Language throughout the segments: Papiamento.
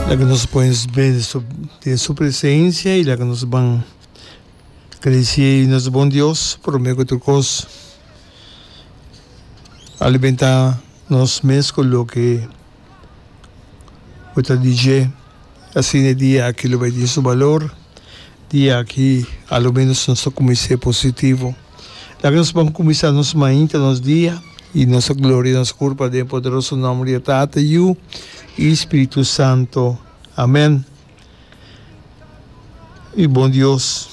Laga nos pones bende so den su presencia y laga nos ban crece nos bon Dios prome cu tur cos alimenta nos mes cu loke cu ta di dje asina e dia aki lo bay tin su balor dia aki alomenos nos ta cuminse positivo. Laga nos bon kuminsá nos mainta, nos dia. I nos a gloria nos kurpa den e poderoso nòmber di e Tata, Yu i Spiritu Santo. Amèn. Mi bon Dios,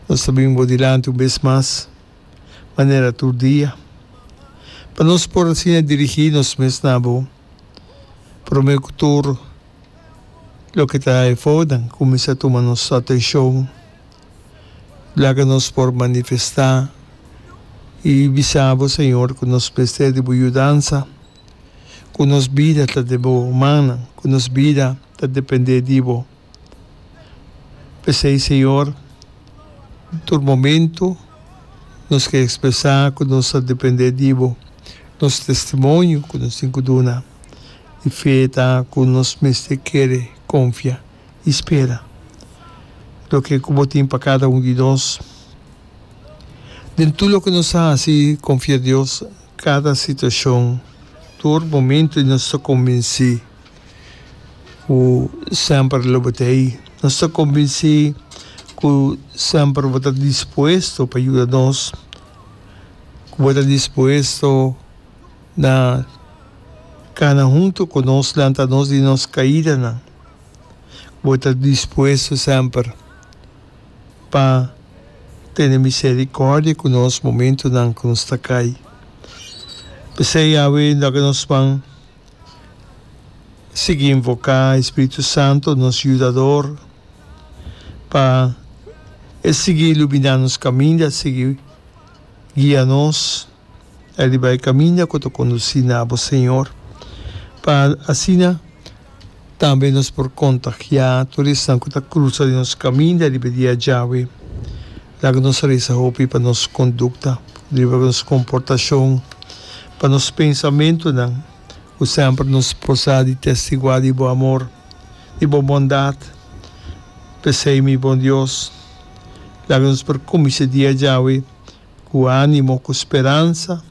nos ta bini bo dilanti un bes mas manera tur dia, pa nos por asina dirigí nos mes na bo. Promé ku tur loke ta efònan kuminsá tuma nos atenshon. Laga nos por manifestá i bisa bo, Señor, ku nos mester di bo yudansa, ku nos bida ta den bo mannan, ku nos bida ta dependé di bo. P'esei, Señor, tur momentu nos ke ekspresá ku nos ta dependé di bo, nos testimonio ku nos tin ku duna. E fe ta ku nos mester kere konfia. y spera loke cu bo tin pa cada un di nos. Den tur loke nos ta haci confia Dios cada situacion, tur momento y nos ta convenci cu semper lo bo ta ahi. Nos ta convenci cu semper bo ta dispuesto pa yuda nos, cu bo ta dispuesto na cana hunto cu nos, lanta nos di nos caidanan. Bo ta dispuesto semper pa tene misericòrdia ku nos momentunan ku nos ta kai. P'esei, Yahweh, undaka nos pan sigui invoká e Spiritu Santu, nos Yudador, pa e sigui iluminá nos kaminda, sigui guia nos. e riba e kaminda ku ta kondusí na bo Señor, pa asina tambe nos por kontagiá tur esnan ku ta krusa den nos kaminda riba e dia djawe. Laga nos resa hopi pa nos kondukta, riba nos komportashon, pa nos pensamentunan, ku semper nos por sa di testiguá di bo amor, di bo bondat. P'esei, mi bon Dios, laga nos por kuminsá e dia djawe Ku ánimo, ku speransa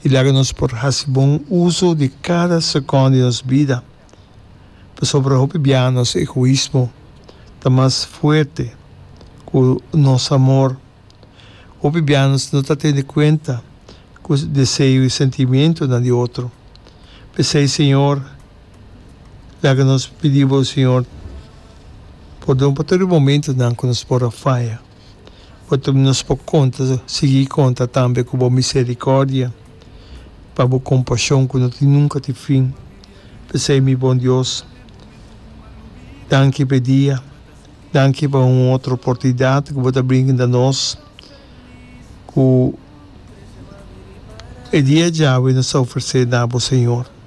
i laga nos por hasi bon uso di kada sekon di nos bida, pasobra hopi biaha nos egoismo ta mas fuerte ku nos amor. Hopi biaha nos no ta tene kuenta ku deseo i sentimentunan di otro. P'esei, Señor, laga nos pidi Bo, Señor, pordon pa tur e momentunan ku nos por a faya. bo ta nos por konta sigui konta tambe ku bo miserikordia pa bo kompashon ku no tin nunka tin fin p'esei mi bon Dios danki p'e dia danki pa un otro oportunidat ku bo ta brinda nos ku e dia djawe nos ta ofrese na bo Señor.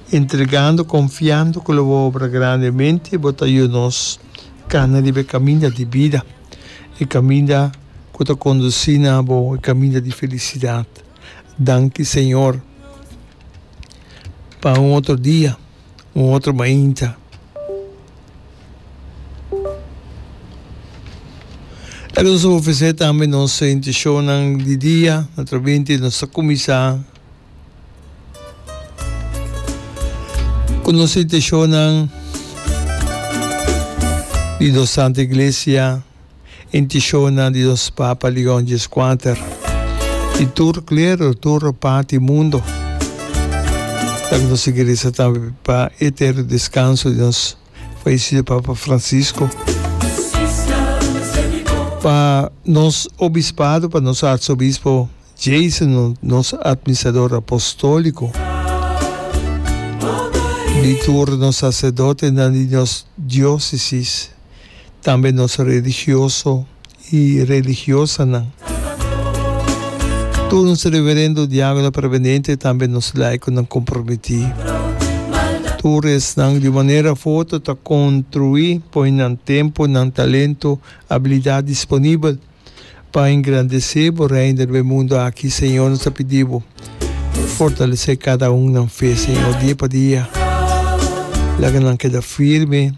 Entregando confiando cu lo bo obra grandemente bo ta yu nos cana riba e caminda di bida, e caminda cu ta conduci na bo e caminda di felicidad. Danki Señor pa un otro dia, un otro mainta. Esaki nos ta ofrecer tambe nos inticion nan di dia, naturalmente nos ta cuminsa. Ku nos intenshonan di nos Santu Iglesia, intenshonan di nos Papa Leon Djeskwater i tur klero, tur parti mundu, ta ku no sigui resa tambe pa e eterno deskanso di nos falesido Papa Francisco, pa nos obispado, pa nos arsobispo. Jason, nos Administrador Apostóliko, di tur nos saserdotenan di nos diósesis, tambe nos religioso i religiosanan, tur nos reverendo, diákono permanente, tambe nos laikonan kompromití, tur esnan di un manera fu oto ta kontruí, poi nan tempu, nan talentu, abilidat disponibel. pa engrandesé bo Reino riba e mundo aki, Señor, nos ta pidi bo, fortalesé kada un nan fe, Señor, dia pa dia. Laga nan keda firme.